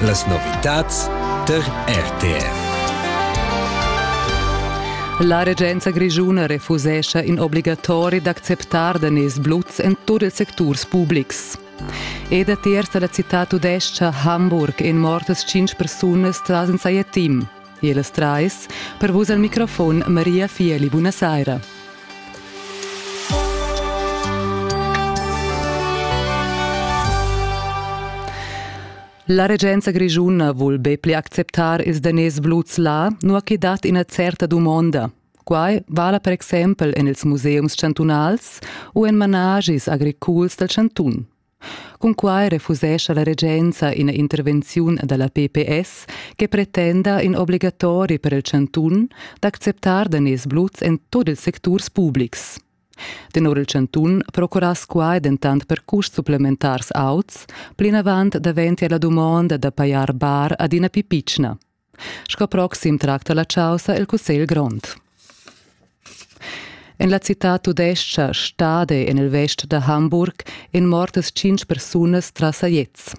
Las novitads tar RTR. La regenza grischuna refusescha in obligatori d'acceptar daners bluts en tut ils secturs publics. Ed a tiers da la citad tudescha Hamburg en mortas tschintg persunas tras in saia team. E las trais per vus al microfon Maria Fieli. Bună seara! La regenza grischuna vul be pli acceptar ils daners bluts là, nua che dat ina certa dumonda. Quai vala per exempel en ils museums chantunals u en manaschis agriculs dal chantun. Cunquai refusescha la regenza ina intervenziun dalla PPS che pretenda in obligatori per il chantun d'acceptar daners bluts en tut ils secturs publics. Tenor il chantun procurass quai dentant per custs supplementars auts, plinavant daventia la dumonda da pajar bar adina più pitschna. Sco proxim tracta la chaussa il Cussegl grond. En la citad tudestga Stade en il vest da Hamburg èn mortas tschintg persunas tras sajets.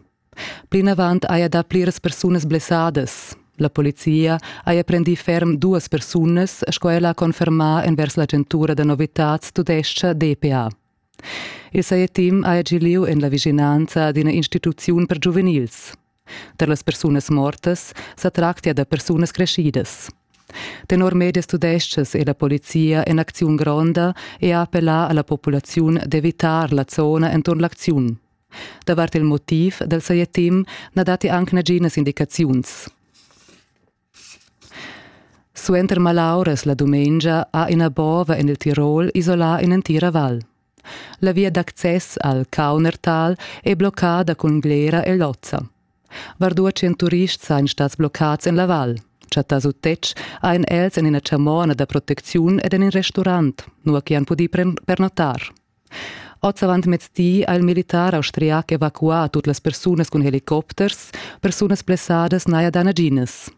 Plinavant haja dà pliras persunas blessadas. La polizia haja prendì ferm duas persunas, sco ella ha confermà envers l'agentura da novitads tudestga DPA. Il sajetim haja gì lieu en la vischinanza d'ina instituziun per giuvenils. Tar las persunas mortas sa tractia da persunas creschidas. Tenor medias tudestgas è la polizia en acziun gronda e ha appellà a la populaziun d'evitar la zona enturn l'acziun. Davart il motiv dal sajettim na datti anc naginas indicaziuns. Suenter malauras la dumengia ha ina bova en il Tirol isolà in'entira val. La via d'access al Kaunertal è bloccada cun glera e lozza. Var 200 turists sajan stads bloccads en la val. Chattà sut tetg han els en ina chamona da protecziun ed en in restaurant, nua che han pudì pernottar. Oz avantmezdi ha il militar austriac evacuà tut las persunas cun helicopters, persunas blessadas n'haja dà naginas.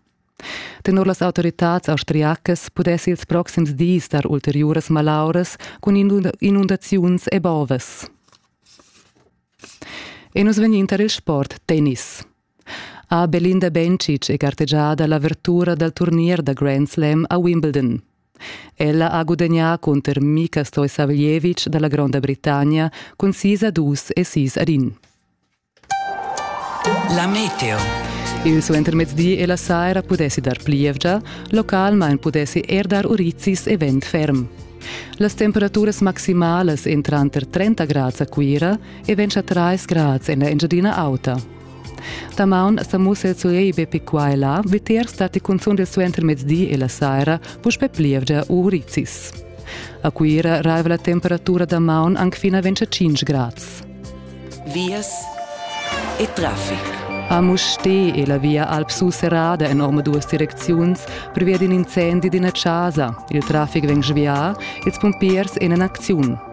Tenor las autoritads austriacas pudess ils proxims dis dar ulteriuras malauras cun inundaziuns e bovas. E nus vegnin tar il sport tennis. ha Belinda Bencic è gartegiada l'avertura dal turnier da Grand Slam a Wimbledon. Ella ha gudagnà cunter Mika Stoisaveljevic da la Gronda Britannia cun sis a dus e sis ad in. La meteo. Il suentermezdi e la saira pudessi dar plievgia, localmain pudessi er dar urizis e vent ferm. Las temperaturas maximalas èn tranter 30 grads a Cuira e 23 grads en la Engiadina Auta. Damaun sa mussa zuei be pi qua e là, vitier stati cunzun del suenter mezdi e la saira, puspe plievgia u rizis. A Cuira raiva la temperatura da maun anc fina 25 grads. Vias e traffic. A Musti e la via Alp Surserrada en orma duas direcziuns previa d'in incendi d'ina casa. Il traffic vegn svià, ils pumpiers en en acziun.